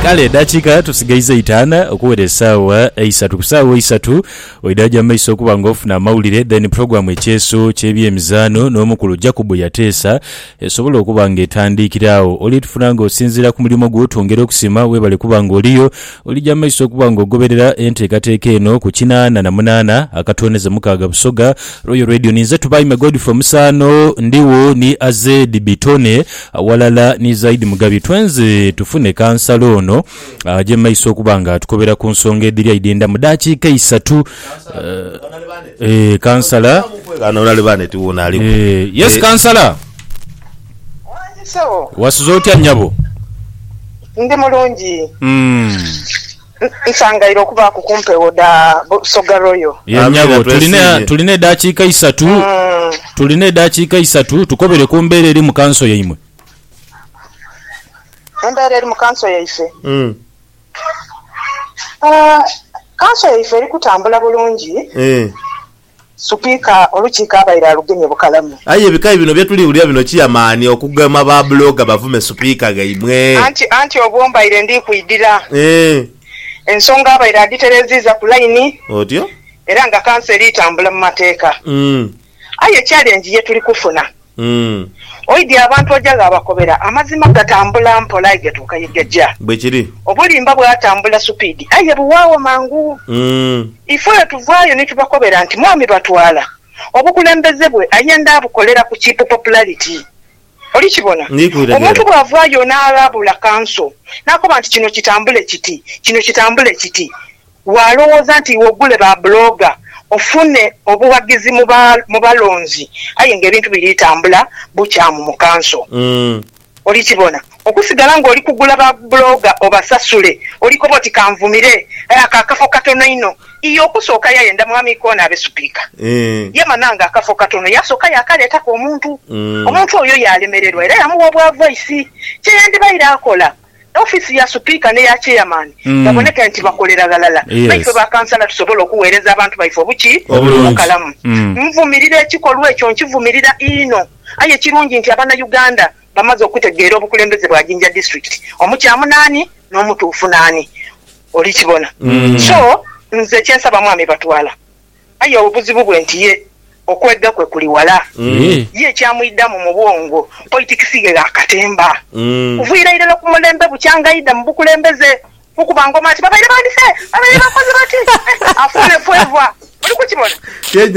Kale edhakiika tusigaiza itaana okuwera esaawa eisatu. Ku saawa eisatu oidha gya mu maiso okuba nga ofuna amawulire then program Ekyeeso ky'ebyemizaano n'omukulu Jacob Yateesa esobola okuba nga etandiikira agho. Oli tufuna nga osinziira ku mulimo gwo twongera okusiima. Weebale kuba nga oliyo. Olija mu maiso okuba nga ogoberera enteekateeka eno ku kinaana na munaana akatooneze mukaaga Busoga Royal Radio. Ninze Tubaime Godfrey Musaano, ndigho ni Azed Bitone aghalala ni Zaidi Mugabi. Twenze tufune Kansala ono aje mu maiso okuba nga atukobera ku nsonga edhiri aidhenda mu daakiika isatu. Eeh Kansala. Eeh yes Kansala. Wasuze otya nyabo? Ndi mulungi. Nsangaire okubaaku ku mpewo dha Busoga Royal. Ye nyabo, tulina edaakiika isatu, tulina edaakiika isatu tukobere ku mbeera eri mu kanso yaimwe. Embeera eri mu kanso yaife? Kanso yaife eri kutambula bulungi. Supiika olukiiko abaire alugemye bukalamu. Aye ebikayi bino byetuli wulira bino kiya mani okugema ba blogger bavume supiika ghaimwe. Anti anti obwo mbaire ndi kwidhira ensonga abaire adhitereziiza ku line era nga kanso eri tambula mu mateeka. Aye challenge yetuli kufuna Umm. Oidhi abantu oja ghabakobera. Amazima gatambula mpola aye gatuuka ye gaja. Bwe kiri. Obulimba bwatambula supiidi aye buwaagho mangu. Umm. Ife olwo tuvaayo ni tubakobera nti Mwami Batwala, obukulembeze bwe ayenda abukolera ku cheap popularity. Oli kibona? Ndi kubitegeera. Omuntu bw'avaayo n'aghabula kanso, n'akoba nti kino kitambule kiti, kino kitambule kiti, Waalowooza nti iwe ogule ba blogger ofune obughagizi mu balonzi aye nga ebintu biri tambula bukyamu mu kanso. Olikibona. Okusigala ng'oli kugula ba blogger obasasule, olikoba oti kanvumire, aye ako akafo katono inho. Iye okusooka yayenda Mwami Ikona abe Supiika. Yamana nga akafo katono, yaasooka yaakaleetaku omuntu. Omuntu oyo yaalemererwa era yamugha obwa vaisi. Kye yandibaire akola, Ofiisi ya Supiika n'eya Chairman baboneka nti bakolera ghalala naife ba Kansala tusobole okuweereza abantu baife obuki? Obukalamu. Nvumirira ekikolwa ekyo, nkivumirira inho. Aye kirungi nti Abanauganda bamaze okutegeera obukulembeze bwa Jinja District, omukyamu naani n'omutuufu naani. Oli kibona? So, nze kyensaba Mwami Batwala. Aye obuzibu bwe nti ye okwega kwe kuli wala. Ye kyamuidhamu mu bwongo politikisi ghe gha katemba. Kuviira irala ku mulembe bukyanga aidha mu bukulembeze kukuba ngoma ati babaire bandise, babaire bakoze bati, afuune fweva. Oli kukibona?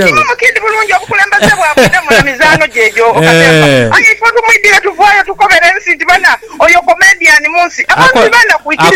Inho mukindi bulungi obukulembeze bwakwidhamu na mizaano gye egyo katemba. Aye ife otumwidhire tuvaayo tukobere ensi nti bana oyo comedian mu nsi. Abantu ti banaku ikiriza.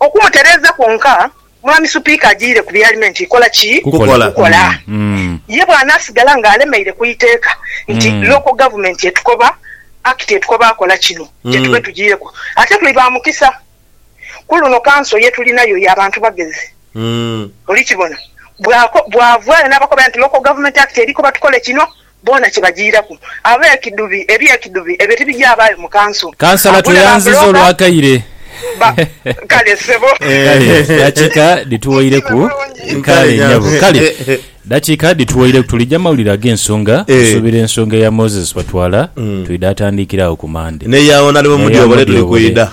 Okumutereeza kwonka, Mwami Supiika ajiire ku bialimenti ikola ki? Kukola. Ye bw'anaasigala ng'alemeire ku iteeka nti Local Government etukoba, Act etukoba akola kino, kye tube tujiireku. Ate tuli ba mukisa. Ku luno kanso ye tulinayo ya bantu bagezi. Oli kibona? Bw'avaayo n'abakobera nti Local Government Act eri koba tukole kino, Boona kye bajiiraku ab'ekidhubi eby'ekidhubi ebyo tibijaabaayo mu kanso. Kansala Agula tweyanziza bambuloga olw'akaire. ba. Kale ssebo. Kale dakiika dhituwoireku. Kale nyabo. Kale dakiika dhituwoireku. Tulija mawulire ag'ensonga. Tusuubira ensonga eya Moses Batwala, twidha atandiikire agho ku Mande. N'eya Onalebo Mudyobole tuli kwidha.